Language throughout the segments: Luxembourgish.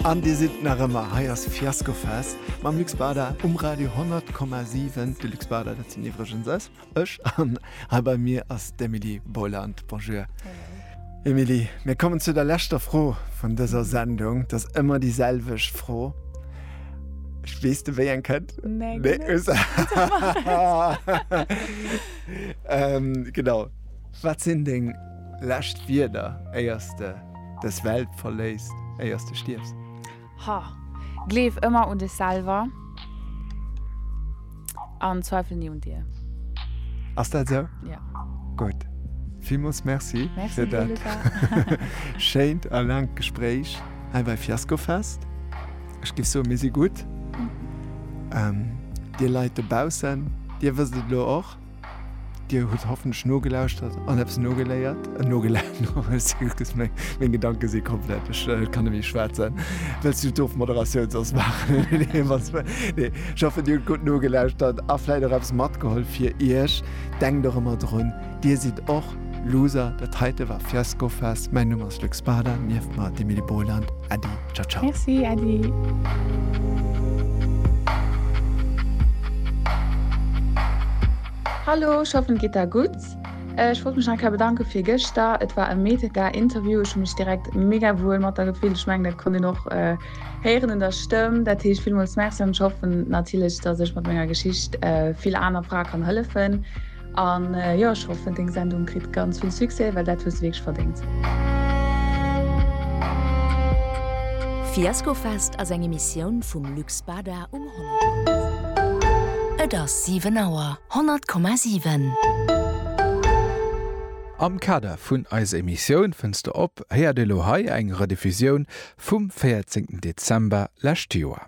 An dir sidd nach ëmmer hei, ass Fiasco Fest mam Luc Spada um Radio 10,7. De Luc Spada, dat sinn iwwregens ës, ech. An hei bei mir ass d'Emilie Boiland. Bonjour. Emilie, mir kommen zu der leschter Fro vun dëser Sendung. Dat ass ëmmer déi selwecht Fro. Weess de, wéi eng kënnt? Nee, nee. ähm, genau. Wat sinn deng lescht Wierder, éiers de. Dës Welt verléiss éiers de stierfs. Ha, gleef ëmmer un dech selwer an zweifel ni un dir. Ass dat esou? Ja. Gutt. Villmools Merci fir dat schéint a laangt Gespréich hei bei Fiasco Fest. Ech géif soen, mir si gutt. Dir Leit dobaussen, dir wësst et elo och. Dir hutt hoffentlech nogelauschtert an eppes nogeléiert, nogeläert, excusez, meng, meng Gedanke si komplett, ech kann net méi schwätzen. Wëlls du d'Ofmoderatioun soss maachen? Nee, wann's mer, nee. Ech hoffen, Dir hutt gutt nogelauschtert a vläit och eppes matgeholl fir Iech. Denkt och ëmmer drun, Dir sidd och Loser, dat heite war Fiaskofest. Mäin Numm ass Luc Spada, nieft mer d'Emily Boland. Äddi, ciao ciao. Merci, äddi. Hallo, ech hoffen et geet der gutt. Ech wollt mech nach eng Kéier bedanke fir gëschter. Et war e mega Interview, ech hu mech direkt mega wuel mat der gefillt. Ech mengen dat konnt een och héieren un der Stëmm. Dat heescht villmools Merci an ech hoffen natierlech, datt ech mat menger Geschicht vill aner Frae kann hëllefen. An jo ech hoffen deng Sendung kritt ganz vill Succès, well dat hues de wierklech verdéngt. Fiaskofest ass eng Emissioun vum Luc Spada um 100,7. Et ass 7 Auer, 100,7. Am Kader vun eiser Emissioun Fënns de op? héiert ee lo hei eng Rediffusioun vum 14 Dezember lescht Joer.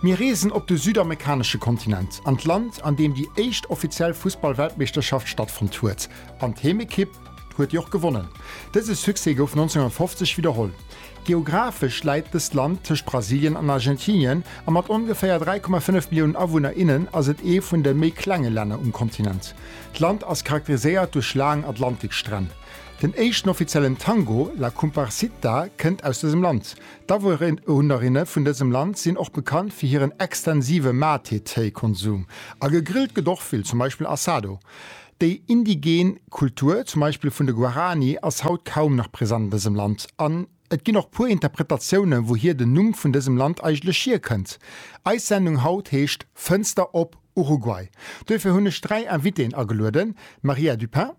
Mir reesen op de südamerikanesche Kontinent, an d'Land, an deem déi éischt offiziell Fussball-Weltmeeschterschaft stattfonnt huet. An d'Heemekipp huet déi och gewonnen. Dëse Succès gouf 1950 widderholl. Geographesch läit dëst Land tëscht Brasilien an Argentinien, a mat ongeféier 3,5 Milliounen Awunner, innen ass et ee vun de méi klenge Länner um Kontinent. D'Land ass charakteriséiert duerch laang Atlantikstränn. Den éischten offiziellen Tango, La Comparsita, kënnt aus dësem Land. D'Awunerinne vun dësem Land sinn och bekannt fir hiren extensive Mate-Téi-Konsum. A gegrillt gëtt och vill, zum Beispill Assado. Déi indigen Kultur, zum Beispill vun de Guarani, ass haut kaum nach present an dësem Land. An et ginn och puer Interpretatiounen, wouhier den Numm vun dësem Land eigentlech hierkënnt. Eis Sendung haut heescht Fënster op Uruguay. Duerfir hunn ech dräi Invitéen agelueden, Maria Dupin.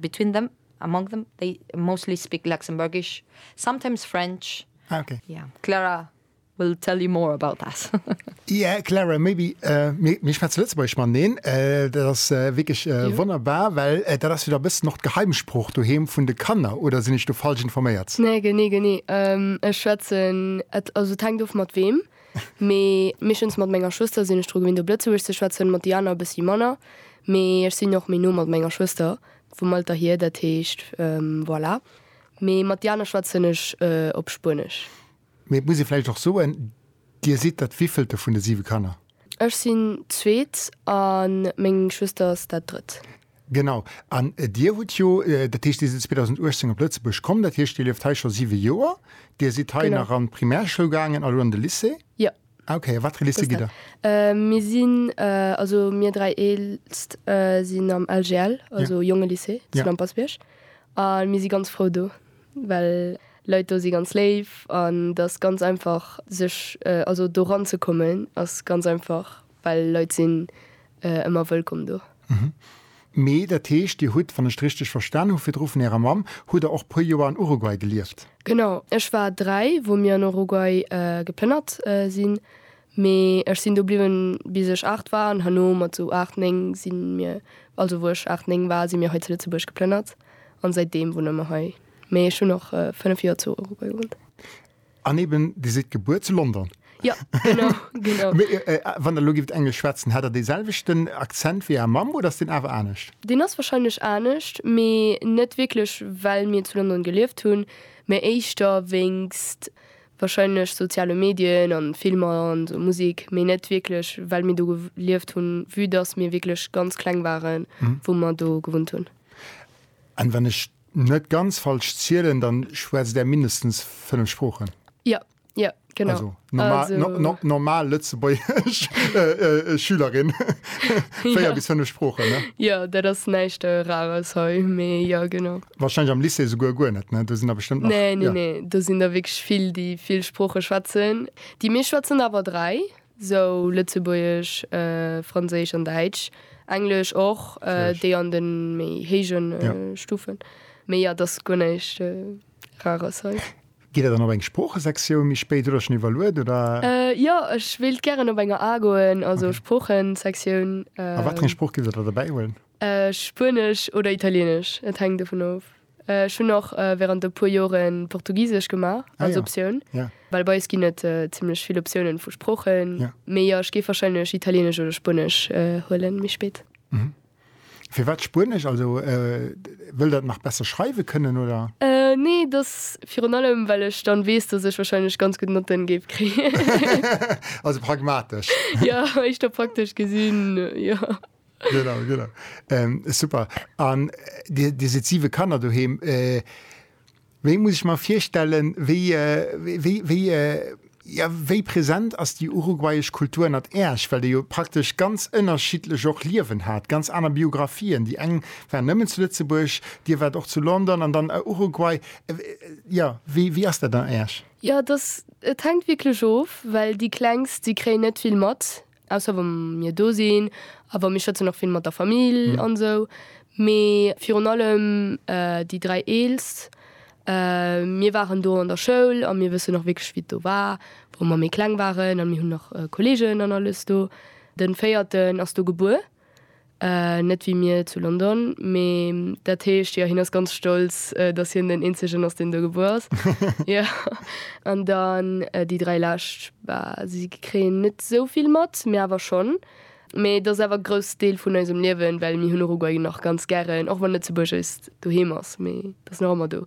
Between them, among them, they mostly speak Luxembourgish, sometimes French. Ah ok. Yeah, Clara will tell you more about that. Yeah, Clara, maybe mir schwätze Lëtzebuergesch mateneen. Dat ass wierklech wonnerbar, well dat ass jo da e bëssen och d'Geheimsprooch doheem vun de Kanner, oder sinn ech do falsch informéiert? Nee, genee, genee. Ech schwätzen, also et hänkt of mat weem. Mee meeschtens mat menger Schwëster sinn ech dru gewinnt, op Lëtzebuergesch ze schwätzen, mat déi aner e bëssi manner. Mee ech sinn och méi no mat menger Schwëster, vum Alter hier. Dat heescht, voilà. Mee mat déi aner schwätzen ech op Spuenesch. Mee et muss ee vläicht och soen, Dir sidd dat wéivillte vun de siwe Kanner? Ech sinn d'Zweet a meng Schwëster ass dat Drëtt. Genau. An Dir hutt jo, dat heescht, Dir sidd 2018 op Lëtzebuerg komm, dat heescht, Dir lieft hei scho siwe Joer. Dir sidd hei nach an d'Primärschoul gaangen a lo an de Lycée? Jo. Ah, okay. A wat fir e Lycée gitt Der? Mir sinn, also mir dräi Eelst sinn am LJL, also Jongelycée zu Lampersbierg. A mir si ganz frou do, well d'Leit do si ganz léif an et ass ganz einfach sech, also do ranzekommen ass ganz einfach. Well Leit sinn ëmmer wëllkomm do. Mee dat heescht, Dir hutt, wann ech et richteg verstan hu virdru vun Ärer Mamm, hutt Der och puer Joer an Uruguay gelieft? Genau. Ech war dräi, wou mir an Uruguay geplënnert sinn. Mee ech sinn do bliwwen, bis ech aacht war. An herno, mat sou aacht, néng si mir, also wou ech aacht, néng war, si mir hei zu Lëtzebuerg geplënnert. An säitdeem wunne mer hei. Mee ech hunn och fënnef Joer zu Uruguay gewunnt. An eben, Dir sidd gebuer zu London? Jo, genau, genau. Mee wann Der elo gift Englesch schwätzen, hätt Der dee selwechten Akzent wéi Är Mamm oder ass deen awer anescht? Deen ass wahrscheinlech anescht, mee net wierklech well mir zu London gelieft hunn, mee éischter wéinst wahrscheinlech soziale Medien an Filmer an esou Musik, mee net wierklech well mir do gelieft hunn, vue dass mir wierklech ganz kleng waren wou mer do gewunnt hunn. An wann ech Net ganz falsch zielen, dann schwätzt där mindestens 5 Sproochen. Jo, jo, genau. Also normal, also, no, no, normal lëtzebuergesch äh, äh, Schülerin. 4 ja. bis 5 Sproochen, ne? Ja, dat ass näischt äh, Rares hei, mee ja, genau. Wahrscheinlich am Lycée souguer guer net, ne? Do sinn da bestimmt nach. Nee, nee, ja. nee, do sinn da wierklech vill, déi vill Sprooche schwätzen. Déi meescht schwätzen awer 3. sou Lëtzebuergesch, Franséisch an Däitsch, Englesch och, déi an de méi héije Stufen. Mee jo, et ass guer näischt Rares hei. Gitt Der dann op eng Sproochesektioun méi spéit oder schonn iwwerluet, oder? Jo, ech wéilt gären op eng AA goen, also Sproochesektioun. A wat fir eng Sprooch gitt Der da derbäihuelen? Spuenesch oder Italieenesch, et hänkt dovun of. Ech hunn och während e puer Joren Portugisesch gemaach als Optioun, well bei eis ginn et zimlech vill Optiounen vu Sproochen. Mee jo, ech géif wahrscheinlech Italienesch oder Spuenesch huelen méi spéit. Firwat Spuenesch? Also wëll der et nach besser schreiwe kënnen oder? Nee, dass virun allem well ech dann weess, dass ech wahrscheinlech ganz gutt Notten géif kréien. Also pragmatesch. Jo, éischter praktesch gesinn, jo. Genau, genau. Ähm, super. An dir, dir sitt siwe Kanner doheem. Äh, wéi muss ech mer virstellen, wéi, äh, wéi, wéi, äh, ja, wéi präsent ass déi uruguayesch Kultur ënnert Äerch? Well dir jo praktesch ganz ënnerschiddlech och Liewen hat, ganz aner Biografien. Déi eng war nëmmen zu Lëtzebuerg, dir waart och zu London an dann a Uruguay. Äh, ja, wéi, wéi ass dat an Äerch? Jo, et ass, et hänkt wierklech of, well déi Klengst, déi kréien net vill mat. Ausser wa mir do sinn a wa mir schwätzen och vill mat der Famill an esou. Mee virun allem déi dräi Eelst. Mir waren do an der Schoul a mir wëssen och wierklech, wéi et do war, wou mer méi kleng waren. A mir hunn nach Kolleegen an alles do. De Véierten ass do gebuer. Net wéi mir zu London, mee dat heescht, jo, hien ass ganz stolz, datt hien den eenzegen ass, deen do gebuer ass. Jo. An dann déi dräi lescht, bah, si kréien net esou vill mat, mir awer schonn. Mee et ass awer e grousse Deel vun eisem Liewen, well mir hunn Uruguay nach ganz gären, och wann Lëtzebuerg eist Doheem ass, mee et ass nach ëmmer do.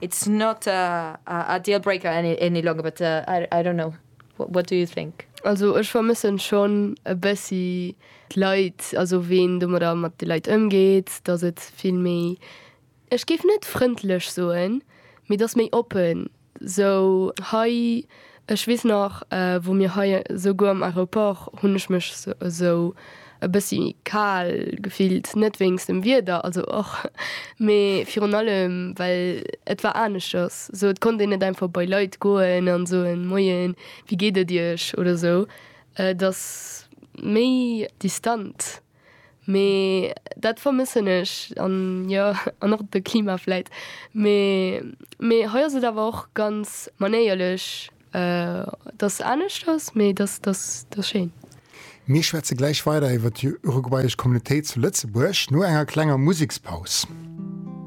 It's not a deal breaker any longer but I don't know what do you think? Also ech vermëssen schon e bessi d'Leit, also ween domadder mat de Leit ëmgeet, dass et vill méi, ech géif net frëndlech soen, mee dass méi oppen sou hei. Ech weess nach, wou mir hei esouguer am Aeroport, hunn ech mech esou e bëssi kal gefillt, net wéinst dem Wieder, also och, mee virun allem, well et war aneschters esou, et konnt een net einfach bei Leit goen a soen, Moien, wéi geet et Iech? oder esou, et ass méi distant. Mee dat vermëssen ech. An jo, an och de Klima vläit. Mee, mee hei ass et awer och ganz manéierlech, datt anescht ass, mee datt, datt, datt schéin. Mir schwätze gläich weider iwwer déi uruguayesch Communautéit zu Lëtzebuerg no enger klenger Musekspaus.